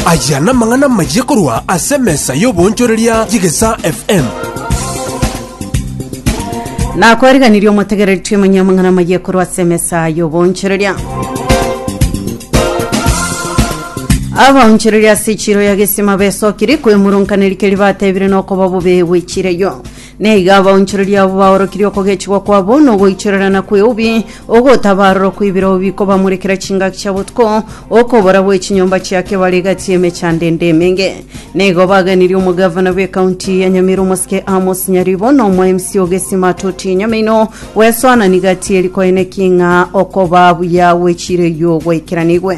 Aya namang'ana amayia korwa ase emesa y'oboonchoreria y'Egesaa FM. nakwariganirie omotegereretie omanye amang'ana amayia korwa ase emesa y'oboonchoreria abaonchoreria ase echiro ya gesima besokiri kwemurunkaneri keri batebire nokoba bobe gwechireyo Na iga abaonchoreria abo baorokirie okogechigwa kwabo na ogoichorerana kw'eubi, ogotabarorwa kw'ebirao bikobamorekera chingaki chia botuko, okobora gwe chinyomba chia kebare egati y'emechando ende emenge. Na igo baganirie omogavana bw'ekaunti ya Nyamira omosike Amos Nyaribo na omo MC o Gesima Toti Nyamaino gwesoanani gati eri koeneki ng'a okobaa buya gwe chiire eyio gwaikeranigwe.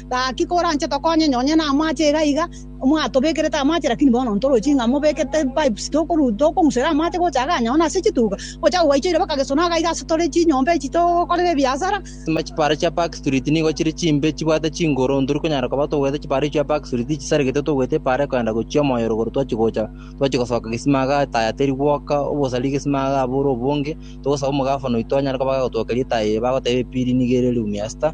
Gaki koranche tokonye nonye namache iga iga mwatobekerete amache lakini bono ntoroche ng'a mobekete pipes tokoru tokong'usera amache gocha iga nonye nase chituga gocha gogaichoire baka gesona iga iga ase tore chinyomba echi tokorera ebiasara. Ime chipara chia Park Street nigo chire chimbe chibwate chinguru ntori konyara koba togwete chipara echi chia Park Street chisaregete togwete epara ekoenda gochia omoyo rogoro twachi gocha twachi gosoka gesima iga etaya teri gwoka obosari gesima iga abore obonge togosaba omogafano oito anyare koba gagotwokeria etaya eye bagoteba epiri nigo ere room ya star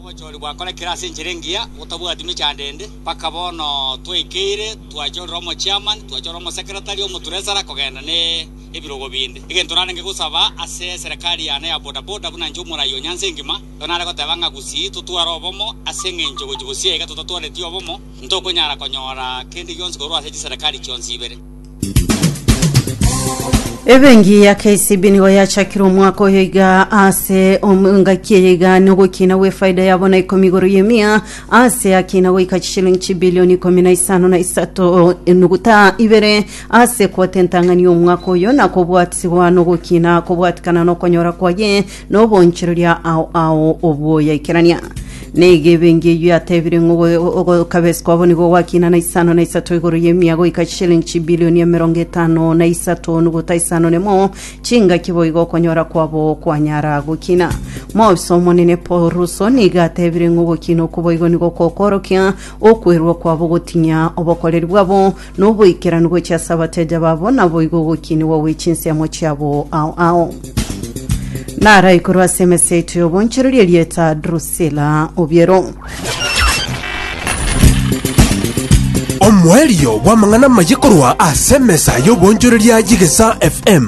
Obochori bwakorekire ase enchera engiya gotabwati mechandende, mpaka bono twaikeire twachorera omochiamani, twachorera omosekeretari, omotresara kogenda ne ebirogo binde. Egento narenge gosaba ase eserekari yane ya bodaboda buna inche omorai o Nyanza Engima, igo nare goteba ng'a gusii totware obomo ase eng'encho gochia bosio iga totatwareti obomo, ntokonyara konyora kende gionsi korwa ase chiserekari chionsi ibere. Ebenki ya KCB nigo yachakire omwaka oyo iga ase om- engaki eye iga na ogokina gwefaida yabo na ikomi igoro y'emia ase akina goika chishilingi chibilioni ikomi na isano na isato enuguta ibere ase kotentang'ani omwaka oyo na kobwatigwa na ogokina kobwatikana na okonyora kwaye Noboonchoreria ao ao obwoyaikerania. Negebe engiya eyio yatebire ng'a ogo- ogokabesi kwabo nigo gwakina na isano na isato igoro y'emia goika chishilingi chibilioni emerongo etano na isato nuguta isano nemo, chingaki boigo okonyora kwabo kwanyara gokina. Moobiso omonene Paul Russo nigo atebire ng'a ogokina okwo boigo nigo kokoorokia okwerua kwabo gotinya obokoreri bwabo Noboikeranu gochia ase abateja babo, naboigo ogokinigwa gwe chinsiamo chiabo ao ao. Narai korwa ase emesa yaito y'obonchereria erieta Drusila Obiero. Omoerio bw'amang'ana amaye korwa ase emesa y'obonchoreria y'Egesa FM.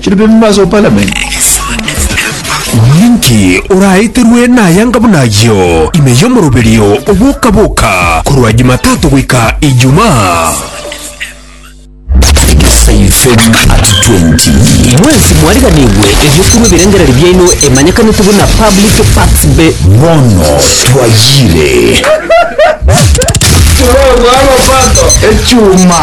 Chire bembe ase opalamenti. Ninki oraeterwe nayanga buna ayio ime y'omoroberio oboka-boka korwa Jumatato goika Ijumaa? Egesaifen@20. Mwensi mwariganigwe erio korwa ebirengererio biaino emanyekanete buna Public Parts Be. Bono twayire. Tore obwaro Pato echuma.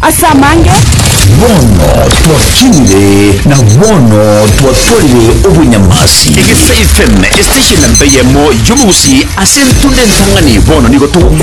Ase amange. Bono twakinire, na bono twatwarire obonyamasi. Egesa FM, estation mbeyemo y'omogusi ase entunda entang'ani, bono nigo togokwana.